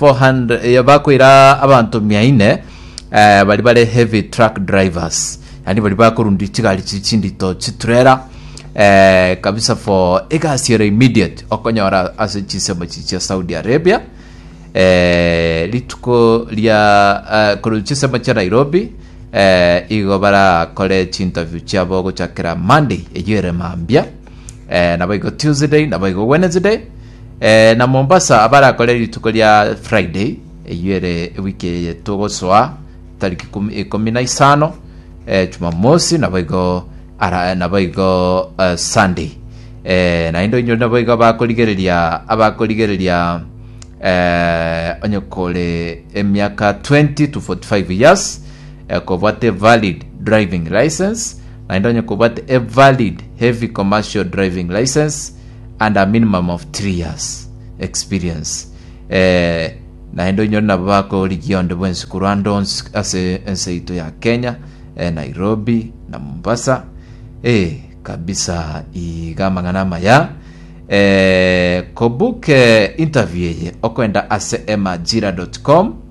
400 eh, bakoira abanto mia ine eh, bari bare heavy truck drivers yani bari bakorundia chigari chiri chindito chiturera eh, kabisa for egasi ero immediate okonyora ase chisemo chichi chia saudi arabia eh, rituko ria eh, korwa chisemo chia nairobi eh, igo barakore chinterview chiabo gochakera monday eyo ere mambia eh, nabo igo tuesday nabo igo wednesday Eh, na Mombasa abarakore rituko ria Friday eyio ere ewiki eye togosoa tariki kumi- ikomi na isano eh, Jumamosi naboigo ara naboigo eh, Sunday eh, naende onye naboigo abakorigereria abakorigereria eh, onye kore emiaka 20 to 45 years eh, kobwate valid driving license naende onye kobwate a valid heavy commercial driving license and a minimum of three years experience eh, naende onyore nabo bakorigia onde bwensi korwa ande onsi ase ense yaito ya Kenya eh, Nairobi na Mombasa eh, kabisa iga amang'ana amaya eh, kobook eh, interview eye okoenda ase emajira.com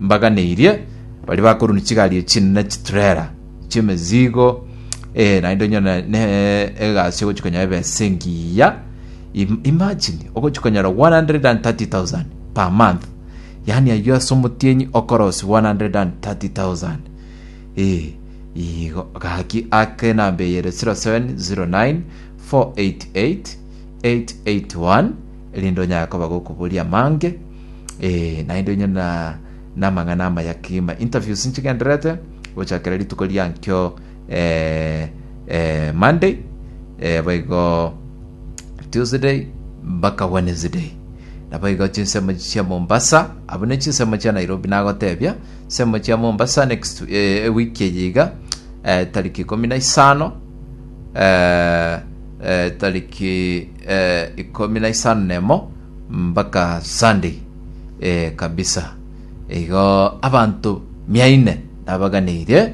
mbaganeirie, baria bakorunda chigari echi chinene chiturera chi'emezigo, eh, naende onye ne- ne egasi ogochi konyora ebe ase engiya Im- imagine ogochi konyora 130000 per month yaani ayio ase omotienyi okorosi 130000 eh, igo gaki ake enamba eye ere 0709 488 881 erinde onyare koba gokoboria amange Eh, naende onye na namang'ana amaya kima interviews nchigenderete gochakera rituko riankio eh, eh, monday eh, boigo tuesday mpaka wednesday nabo igo chinsemo chia mombasa abo ne chinsemo chia nairobi nagotebia nsemo chia mombasa next eh, ewiki eye iga eh, tariki ikumi na isano eh, eh, tariki eh, ikumi na isano nemo mpaka Sunday eh, kabisa. Igo abanto mia ine nabaganeirie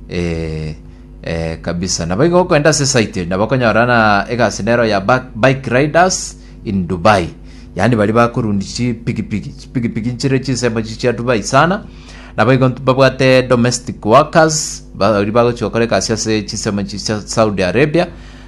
eh, eh, kabisa. Nabo igo okoenda ase site nabo okonyora na egasi nero ya Bak- bike riders in Dubai. Yaani bari bakorundi chipigipigi, chipigipigi nchire chinsemo chi chia Dubai sana. Nabo igo ntu- babwate domestic workers bari bagochia gokora egasi ase chinsemo chi chia Saudi Arabia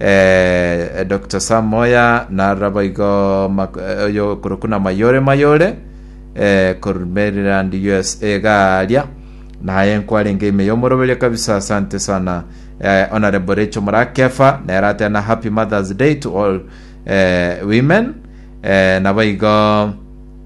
Eeh Doctor Sam Moya narora boigo mak oyo okorokwa na Mayore Mayore eh, korwa Maryland USA iga aria naye nkwarenge ime yomoroberio kabisa asante sana eh, Honorable Rachel Murakefa nere atera na Happy Mother's Day to all eh, women eh, nabo igo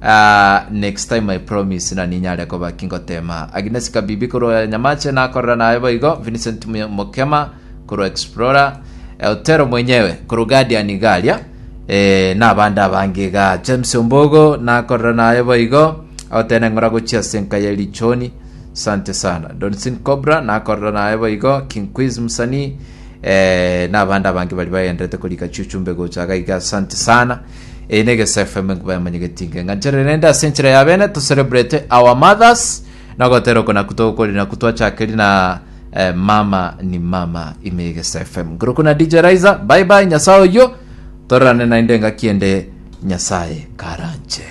Aah next time I promise nani nyare koba ki ngoteema Agnes Kabibi korwa Nyamache nakorera naye boigo Vincent Mu- Mukema korwa Explorer eh, Otero mwenyewe korwa Guardian iga aria eh, na abande abange iga James Ombogo nakorera naye boigo agotene ng'ora gochia ase enka ya Lichoni Sante sana Donsin Cobra nakorera naye boigo King Quiz msanii eh, na abande abange bari bagenderete korika chiuchumbe gocha iga iga Sante sana Eye ne Egeso FM enkuba yamanyegeti inke ng'anchere rende ase enchera ya bene to celebrate our mothers na gotera oko naku togokori naku twachakeri na eh, mama ni mama ime ya Egeso FM nguru kuna DJ Raiza bye bye nyasaye oyo torane naende ngaki ende nyasaye karanche